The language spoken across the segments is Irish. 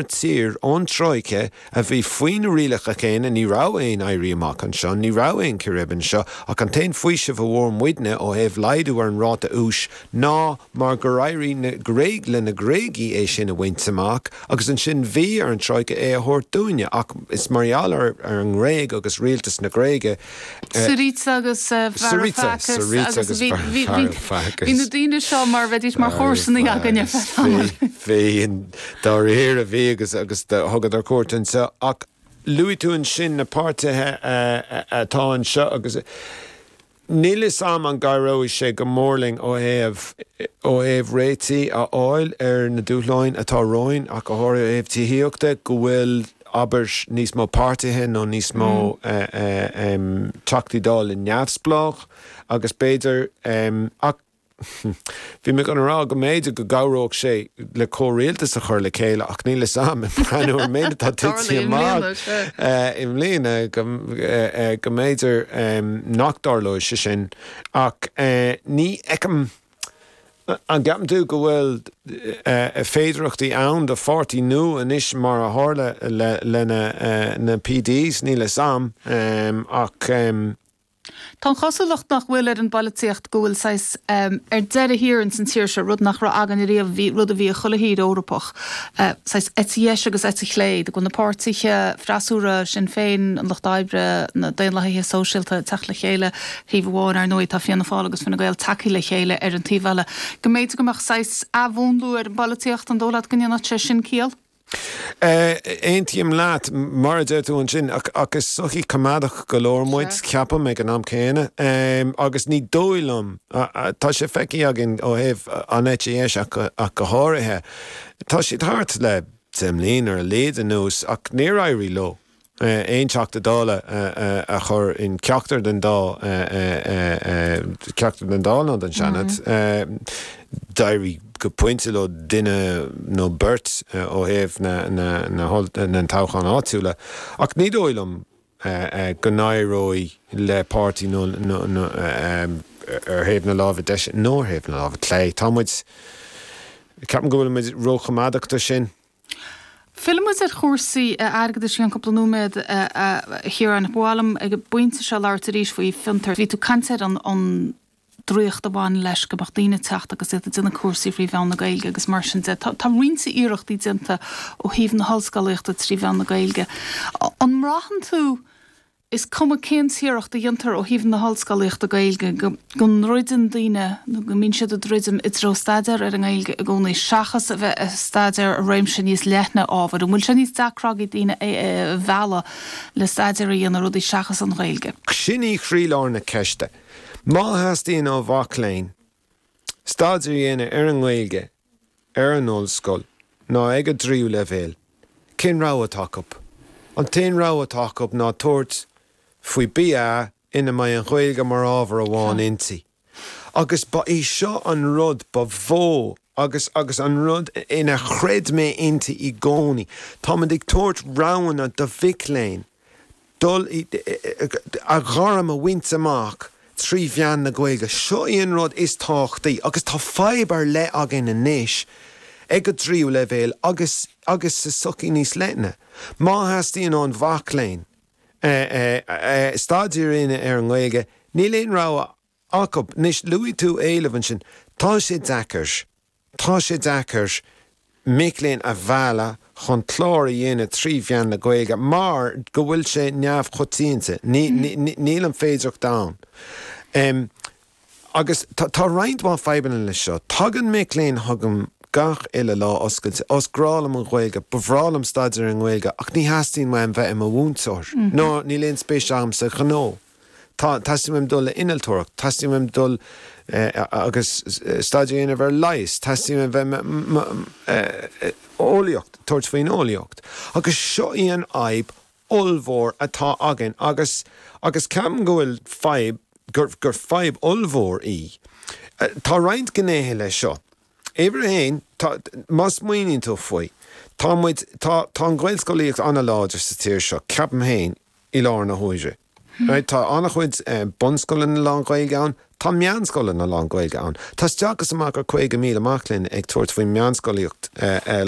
tír ón Troika a bhí faoi na rialacha céanna, ní raibh aon éirí amach anseo, ní raibh aon círéib anseo, ach an t-aon faoiseamh a fuair muidne ó thaobh laghdú ar an ráta úis ná mar gur éirigh na Gréig le na Gréagaigh é sin a bhaint amach agus ansin bhí ar an Troika é a thabhairt dúinne ach is mar gheall ar ar an nGréig agus rialtas na Gréige Syriza agus Varoufakis agus bhí na daoine seo mar bheidís mar chomharsanaí againn ar feadh tamaill. Bhí, dá réir a bhí agus thugadar cuairt anseo. Ach luaigh tú ansin na páirtithe atá anseo agus níl 'fhios a'm an gcabhróidh sé go mór linn ó thaobh, ó thaobh réitigh a fháil ar na dúshláin atá romhainn ach go háirithe ó thaobh tithíochta, go bhfuil abair, níos mó páirtithe nó níos mó Teachtaí Dála neamhspleách agus b'fhéidir, ach bhí mé chun a rá go mb'fhéidir go gcabhródh sé le comhrialtas a chur le chéile ach níl a fhios a'm, ag breathnú ar an méid atá tití amach i mbliana go mb'fhéidir nach dtarlóidh sé sin ach ní fheicim. An gceapann tú go bhfuil féidearthachtaí ann do pháirtí nua anois mar a tharla le na PDs? Níl 'fhios a'm ach. Tá an chosúlacht nach bhfuil ar an bpolaitíocht go bhfuil saghas ar deireadh thiar ins an tír seo, rud nach raibh againne riamh, bhí, rud a bhí ag chuile thír Eorpach, saghas eite dheis agus eite chlé, go bhfuil na páirtithe freasúra, Sinn Féin, an Lucht Oibre, na Daonlathaigh Shóisialta, ag teacht le chéile, ar thaobh amháin. Ar ndóigh, tá Fianna Fáil agus Fine Gael tagtha le chéile ar an taobh eile. Go mb'fhéidir go mbeadh saghas athmhúnlú ar an bpolaitíocht, an dóigh leat go ndéanfadh sé sin ciall? Aontaím leat, mar a deir tú ansin, ach is sochaí coimeádach go leor muid, ceapaim, ag an am céanna. Agus ní dóigh liom, tá sé feicthe againn ó thaobh an eite dheis ach go háirithe, tá siad thart le deich mbliana ar a laghad anuas ach níor éirigh leo aon Teachta Dála a chur in ceachtar den dá ceachtar den Dáil nó den Seanad. D'éirigh go pointe leo duine nó beirt ó thaobh na dtoghchán áitiúla ach ní dóigh liom go n-éireoidh le páirtí nó ar thaobh na láimhe deise nó ar thaobh na láimhe clé. Tá muid, ceapaim go bhfuil muid róchoimeádach do sin. Fillfimid ar chúrsaí airgeadais i gceann cúpla nóiméad, a Chiaráin, ach ba mhaith liom ag an bpointe seo labhairt arís faoi Fiontar. Bhí tú ag caint ar an draíocht a bhaineann leis go mbeadh daoine ag teacht agus iad ag déanamh cúrsaí frí mheán na Gaeilge agus mar sin de. Tá roinnt iarrachtaí déanta ó thaobh na hollscolaíochta trí mheán na Gaeilge. An mbraitheann tú is cuma cén t-iarracht a dhéantar ó thaobh na hollscolaíochta Gaeilge de, go ndruideann daoine, nó go mbíonn siad ag druidim, i dtreo staidéar ar an nGaeilge i gcónaí, seachas a bheith ag staidéar ar réimse níos leithne ábhair. An bhfuil sé níos deacra ag iarraidh daoine a mhealladh le staidéar a dhéanamh ar rudaí seachas an Ghaeilge? Sin í chroílár na ceiste. Má theastaíonn ó mhac léinn staidéar a dhéanamh ar an nGaeilge ar an ollscoil ná ag a dtríú leibhéal. Cén rogha atá acu? An t-aon rogha atá acu ná tabhairt faoi BA ina mbeidh an Ghaeilge mar ábhar amháin inti. Agus ba é seo an rud ba mhó agus agus an rud inar chreid mé inti i gcónaí, táimid ag tabhairt roghanna do mhic léinn. dul i gairm a bhaint amach trí mheán na Gaeilge. Seo í an rud is tábhachtaí agus tá fadhb ar leith againn anois ag an dtríú leibhéal agus agus sa tsochaí níos leithne. Má theastaíonn ó mhac léinn staidéar a dhéanamh ar an nGaeilge, níl aon rogha acu. Anois, luaigh tú éileamh ansin. Tá sé deacair. Tá sé deacair mic léinn a mhealladh chun clár a dhéanamh trí mheán na Gaeilge mar go bhfuil sé neamhchoitianta, níl an féidearthacht ann agus tá roinnt mhaith fadhbanna leis seo. Tagann mic léinn chugam gach uile lá oscailte, ó is grá liom an Ghaeilge, ba bhreá liom staidéar i nGaeilge ach ní theastaíonn uaim bheith i mo mhúinteoir ná níl aon spéis agam sa ghnó. Tá, teastaíonn uaim dul le innealtóireacht, teastaíonn uaim dul agus staidéar a dhéanamh ar leigheas, teastaíonn uaim bheith eolaíocht, tabhairt faoin eolaíocht. Agus seo í an fhadhb ollmhór atá againn agus, agus ceapaim go bhfuil fadhb, gur, gur fadhb ollmhór í. Tá roinnt gnéithe leis seo. Uimhir a haon, tá, má smaoiníonn tú faoi, tá muid, tá, tá an Ghaelscolaíocht an-láidir sa tír seo, ceapaim féin, i láthair na huaire. Tá an-chuid bunscoileanna lán-Ghaeilge ann, tá meánscoileanna lán-Ghaeilge ann. Tá isteach is amach le 50,000 mac léinn ag tabhairt faoin meánscolaíocht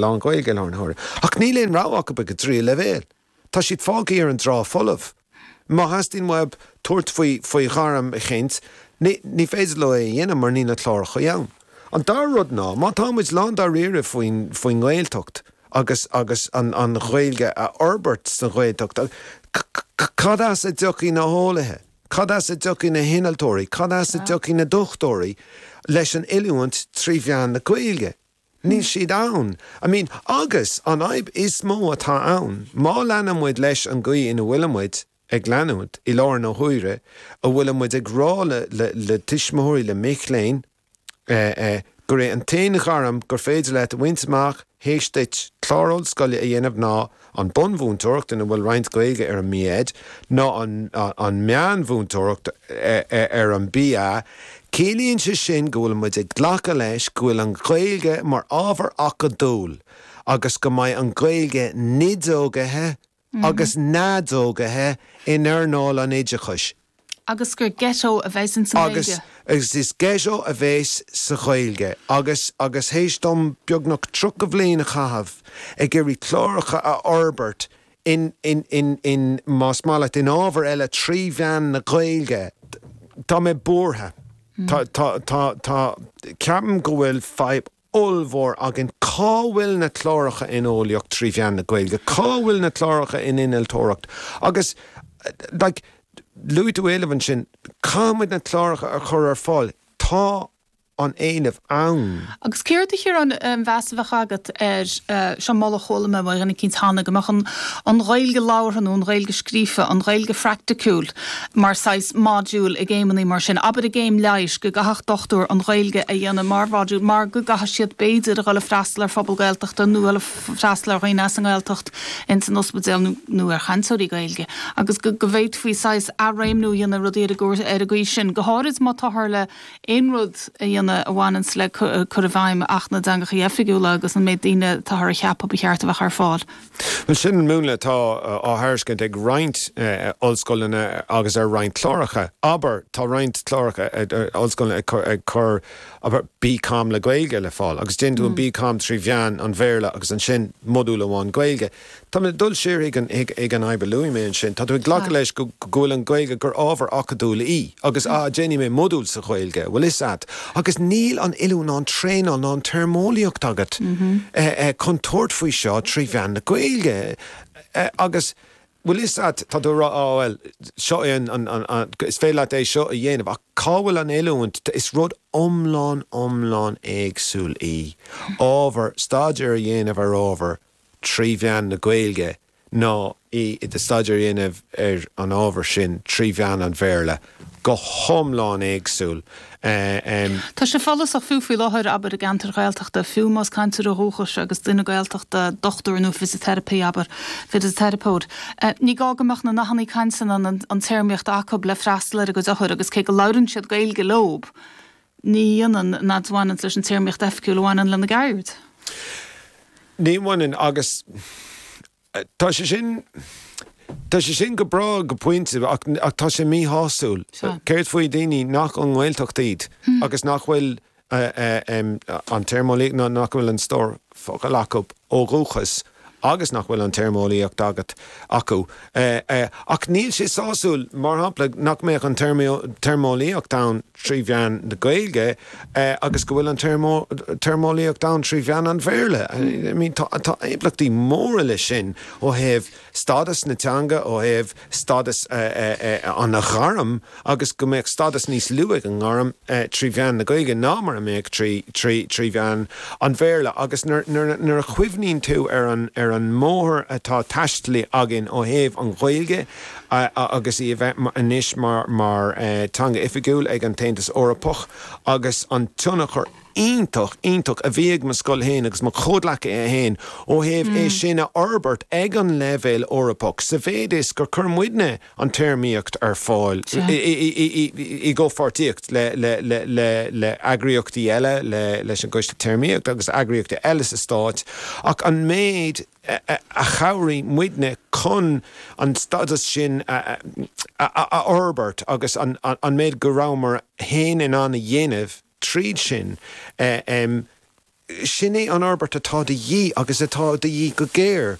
lán-Ghaeilge i láthair na huaire, ach níl aon rogha acu ag an dtríú leibhéal. Tá siad fágtha ar an dtrá folamh. Má theastaíonn uathu tabhairt faoi, faoi ghairm eicínt, ní féidir leo é a dhéanamh mar níl na cláracha ann. An dara rud ná, má táimid lándáiríre faoin nGaeltacht, agus agus an Ghaeilge a fhorbairt sa Ghaeltacht, cad as a dtiocfaidh na heolaithe, cad as a dtiocfaidh na hinnealtóirí, cad as a dtiocfaidh na dochtúirí leis an oiliúint trí mheán na Gaeilge? Níl siad ann. I mean, agus, an fhadhb is mó atá ann, má leanann muid leis an gcaoi ina bhfuilimid ag leanúint, i láthair na huaire, a bhfuilimid ag rá le tuismitheoirí, le mic léinn, gurb é an t-aon ghairm gur féidir leat a bhaint amach théis duit clár ollscoile a dhéanamh ná an bhunmhúinteoireacht, ina bhfuil roinnt Gaeilge ar an mB.Ed, nó an mheánmhúinteoireacht ar an BA. Ciallaíonn sé sin go bhfuil muid ag glacadh leis go bhfuil an Ghaeilge mar ábhar acadúil agus go mbeidh an Ghaeilge neadógaithe, agus neadógaithe in earnáil an oideachais. Is ghetto a bheas sa Ghaeilge. Agus, agus théis dom beagnach tríocha bhliain a chaitheamh ag iarraidh cláracha a fhorbairt in, in, in, in, más maith leat, in ábhair eile trí mheán na Gaeilge, tá mé buartha. Tá, tá, tá, tá, ceapaim go bhfuil fadhb ollmhór againn cá bhfuil na cláracha in Eolaíocht trí mheán na Gaeilge, cá bhfuil na cláracha in Innealtóireacht agus like luaigh tú éileamh ansin, caithfidh muid na cláracha a chur ar fáil, tá an éileamh ann. Agus céard a Chiaráin an meas a bheadh agat ar, seo moladh a chuala mé ó dhuine eicínt cheana, go mbeadh an Ghaeilge labhartha nó an Ghaeilge scríofa, an Ghaeilge phraicticiúil, mar saghas module i gcéimeannaí mar sin, abair i gcéim leighis go gcaithfeadh dochtúir an Ghaeilge a dhéanamh mar mhodule mar go gcaithfidh siad b'fhéidir a dhul ag freastal ar phobal Gaeltachta nó a dhul ag freastal ar dhaoine as an nGaeltacht in san ospidéal nó nó ar chainteoirí Gaeilge agus go go bhféadfaí saghas athréimniú a dhéanamh ar rudaí ar an gcaoi sin, go háirid má táthar le aon rud a dhéanamh a bhaineann le cur i bhfeidhm Acht na dTeangachaí Oifigiúla agus an méid daoine a táthar a cheapadh ba cheart a bheadh ar fáil. Bhuel, sin an múnla atá á thairiscint ag roinnt ollscoileanna agus ar roinnt cláracha. Abair, tá roinnt cláracha, ollscoileanna ag cur, abair, BComm le Gaeilge le fáil agus déanann tú an BComm trí mheán an Bhéarla agus ansin modúl amháin Gaeilge. Tá mé ag dul siar chuig an fhadhb a luaigh mé ansin, tá tú ag glacadh leis go bhfuil an Ghaeilge, gur ábhar acadúil í agus, ah, déanfaidh mé modúl sa Ghaeilge, bhfuil 'fhios a'at. Agus níl an oiliúint ná an traenáil ná an téarmeolaíocht agat chun tabhairt faoi seo trí mheán na Gaeilge. Agus bhfuil 'fhios a'd, tá tú a' rá 'á bhuel, seo é an, an, an, an, is féidir leat é seo a dhéanamh' ach cá bhfuil an oiliúint, is rud iomlán, iomlán éagsúil í ábhar, staidéar a dhéanamh ar ábhar trí mheán na Gaeilge, ná í do staidéar a dhéanamh ar an ábhar sin trí mheán an Bhéarla, go hiomlán éagsúil. Tá sé follasach, fiú faoi láthair, abair, i gceantair Ghaeltachta, fiú más cainteoir dúchais agus duine Gaeltachta, dochtúir nó fisiteiripe, abair, fisiteiripeoir, ní gá go mbeadh na nathannaí cainte ná an téarmaíocht acu le freastal ar a gcuid othar agus cé go labhrann siad Gaeilge leob, ní dhéanann nó nach mbaineann leis an téarmaíocht oifigiúil a bhaineann lena gceird. Ní bhaineann, agus tá sé sin, tá sé sin go breá go pointe ach tá sé míshásúil. Céard faoi dhaoine nach ón nGaeltacht iad agus nach bhfuil an téarmeolaíocht nó nach bhfuil an stór focal acu ó dhúchas? agus nach bhfuil an téarmeolaíocht agat, acu. Ach níl sé sásúil, mar shampla, nach mbeadh an téarmeolaíocht ann trí mheán na Gaeilge agus go bhfuil an téarmeolaíocht ann trí mheán an Bhéarla. I mean, tá impleachtaí móra leis sin ó thaobh stádas na teanga, ó thaobh. stádas an ghairm agus go mbeadh stádas níos lú ag an ngairm trí mheán na Gaeilge ná mar a mbeadh trí mheán an Bhéarla agus nuair a chuimhníonn tú ar an mbóthar atá taistealaithe againn ó thaobh an Ghaeilge agus í a bheith anois mar teanga oifigiúil ag an tAontas Eorpach agus an tionchar iontach iontach a bhí ag mo scoil féin agus mo chomhghleacaithe féin ó thaobh é sin a fhorbairt ag an leibhéal Eorpach sa mhéid is gur chuir muidne an téarmaíocht ar fáil i gcomhpháirtíocht le heagraíochtaí eile, leis an gCoiste Téarmaíochta agus eagraíochtaí eile sa Stát ach an méid a chabhraigh muidne chun an stádas sin a fhorbairt agus an méid go rabhamar féin in ann a dhéanamh. tríd sin. Sin é an fhorbairt atá de dhíth, agus atá de dhíth go géar.